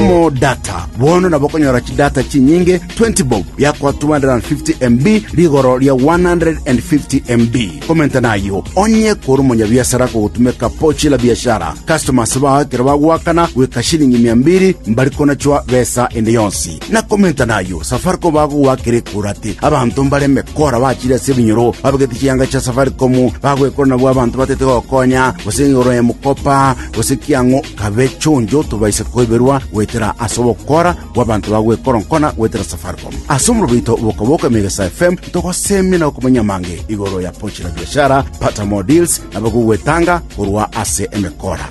Omodata bono nabo okonyora chidata chinyinge 20 bob yakwa 250 MB rigoro ria 150 MB. Komenta nayo onye kore omonyabiasara kogotumeka pochi la biashara. Customers bao ekero bagoakana goika shilingi mia mbiri mbari konachwa besa ende yonsi. Na komenta nayo Safaricom bagogoakera ekura ati abanto mbare emekora bachire ase ebinyoro babegete chianga chia Safaricom bagoekora nabwo abanto batete gokonya gose igoro ya mokopa gose kiang'u kabe chonjo tobaise koiberwa goetera ase ogokora gw'abanto ba gwekoronkona goetera Safaricom. Ase omorobo oito Bokaboka Emegesa FM ntogosemia na gokomanya amange igoro ya Pochi la Biashara, Pata More Deals na Boka Ogwetanga korwa ase Emekora.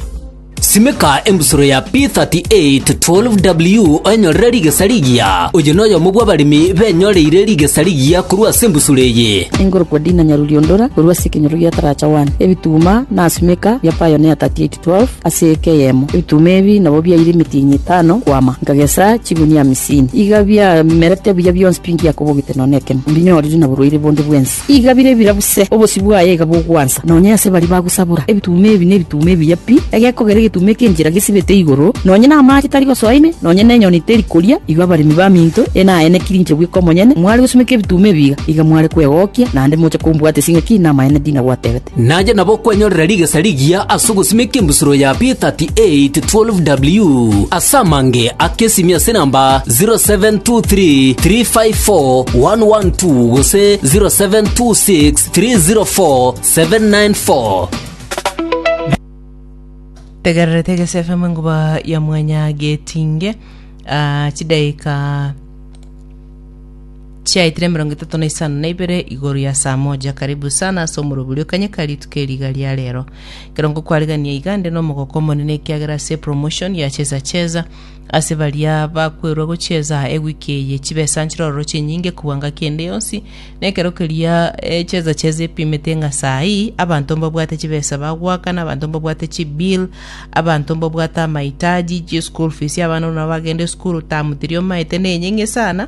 Simeka embusuro ya P38 12W oenyorere rigesa rigiya. Oyo noyomo bw'abaremi benyoreire rigesa rigiya korwa ase embusuro eye. Engoro kwa Dina Nyaruriondora korwa ase ekenyoro gia Taracha One, ebituma, Nasimeka biapayonea 38 12 ase eke eyemo, ebituma ebi nabo biaire emetienyi etano kwama, nkagesa chigunia amisini. Iga biamerete buya bionsi pi ngiakobogete nonya nekemo, mbinyorire na borwaire bonde bwensi. Iga bire bira buse, obosio bwaye iga bogwansa nonya ase baria bagosabora. Ebituma ebi nebituma ebiya pi, egekogera egetuma ekia enchera gesibete igoro, nonya namache tari gosoa ime, nonya nenyoni teri koria, igo abaremi baminto ene aye nekirinche bweka omonyene, mware gosimeka ebituma ebi iga, iga mware kwegokia, naende moche kombwata ase ng'aki namaene ndinagwatebete. Nache nabo kwenyorera rigesa rigiya ase ogosimeka embusuro ya P3812W ase amange ake esimi ase namba 0723354112 gose 0726304794. tegererete egesefe mwenguba ya mwanya getinge ah, chidaika Chiaetire emerongo etato na isano na ibere igoro ya saa moja. Karibu sana ase omorobori o Kanyeka rituko eriga ria rero. Ekero ngokwarigania iga nde nomogoko omonene ekiagera ase promotion ya Cheza Cheza ase baria bakwerwa gochieza ewiki eye chibesa nchirororo chinyinge kobua ngaki ende yonsi na ekero keria eh, Cheza Cheza epimete ng'a saa hii abanto mbabwate chibesa bagoaka na abanto mbabwate chibill Abanto mbabwate amaitaji, chischool school fees y'abana buna bagende esukuru term tiri omaete na enyeng'e sana,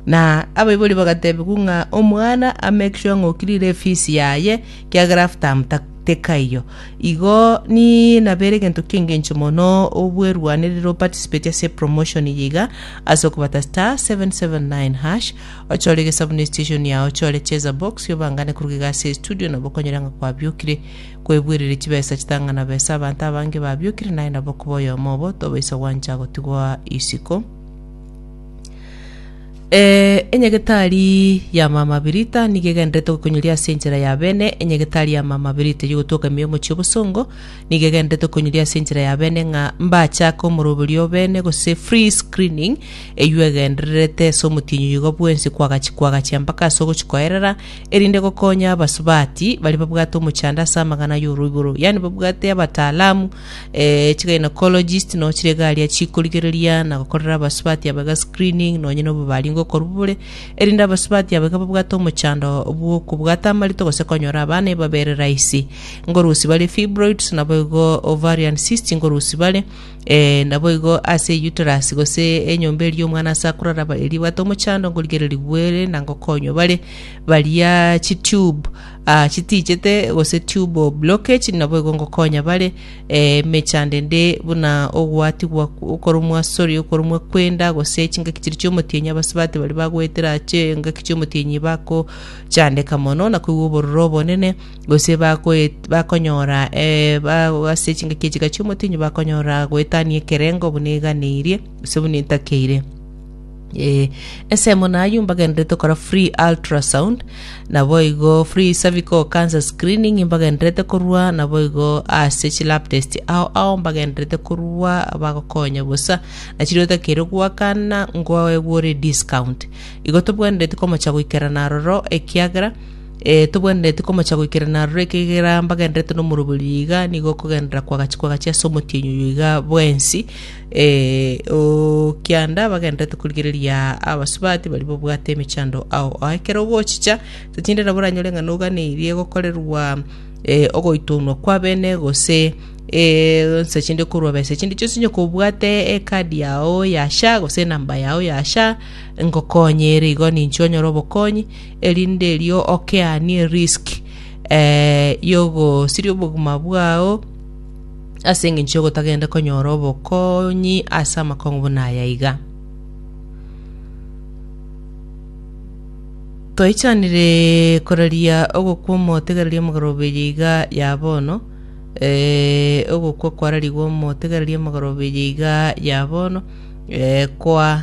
na abaibori bagatebiwa ng'a omwana a make sure ng'a okirire efees yaye kiagera half term ta- tekaiyo. Igo ni nabere egento kiengencho mono obwerwanerire oparticipate ase epromotion eye iga ase okobata star 779 hash ochore egesabu na estation yao ochore cheza box obangane koruga iga ase estudio nabo okonyore ng'a kwabiokire Kwebuereria chibesa chitang'ana besa abanto abange babiokire naye nabo koba oyomo obo tobaisa gwancha gotigwa isiko. Eh, enyegetari ya mama Birita nigo egenderete gokonyoria ase enchera ya bene. Enyegetari ya mama Birita yogotwoka ime y'omochie obosongo nigo egenderete gokonyoria ase enchera ya bene ng'a mbachake omoroberio o bene gose free screening eywo egendererete ase omotienyi oyogo bwensi kwagachi kwagachia mpaka ase ogochi koerera erinde gokonya abasubati baria babwate omochando ase amang'ana y'oroiboro, yaani babwate abataalamu, eh, chigynecologists, nonya chirego aria chikorigereria na gokorera abasubati abo iga screening, nonya na obobaringo okorwa bobore, erinde abasubati abo iga babwate omochando bw'okobwata amarito gose konyora abana ebabere rahisi. Ngorusi bare fibroids, naboigo ovarian cysts ngorusi bare, Ee, naboigo ase Yuterasi, gose enyomba eria omwana ase akoraraba eria bwate omochando, ngorigereria gwere na ngokonywa bare baria chitube ah, chitichete gose tube of blockage, naboigo ngokonya bare eh, emechando ende buna ogwatigwa kw- okorumwa sorry okorumwa kwenda gose chingaki chiri chiomotienyi abasibati bari bagoetera ache engaki chiomotienyi bakochandeka mono na koigwa obororo obonene Gose bagoet- bakonyora eh, ba- ase chingaki echiga chi'omotienyi bakonyora goetania ekerengo buna eganeirie, gose buna etakeire. Eh, ensemo nayio mbagenderete okora free ultrasound naboigo free cervical cancer screening mbagenderete korwa naboigo ase chi lab test ao ao mbagenderete korwa bagokonya bosa nachiri otakeire goakana ngoegwore discount igo tobwenereti komocha goikerana aroro ekiagera Ee, tobwenereti komocha goikerana aroro ekegera mbagenderete nomoroberio iga, nigo okogenderera kwagachi kwagachi ase omotienyi oyo iga bwensi, ee, o kianda bagenderete korigereria abasubati baria babwate emechando ao. Ao ekero ogochicha, totinde nabo oranyore ng'a noganeirie gokorerwa ee, ogoitonwa kwa bene gose ee, onsi ase chinde korwa besa chinde chionsi onye kobwate ekadi yao ya SHA gose enamba yao ya SHA, ngokonye ere igo ninche onyore obokonyi, erinde erio okeanie erisk eh, y'ogosiria obogima bwao ase engencho y'ogotagenda konyora obokonyi ase amakong'u buna aya iga. Toichanire koraria ogokwa omotegereria omogarobeye iga ya bono, eh, ogokwa kwararigwe omotegereria omogarobeye iga ya bono, eh, kwa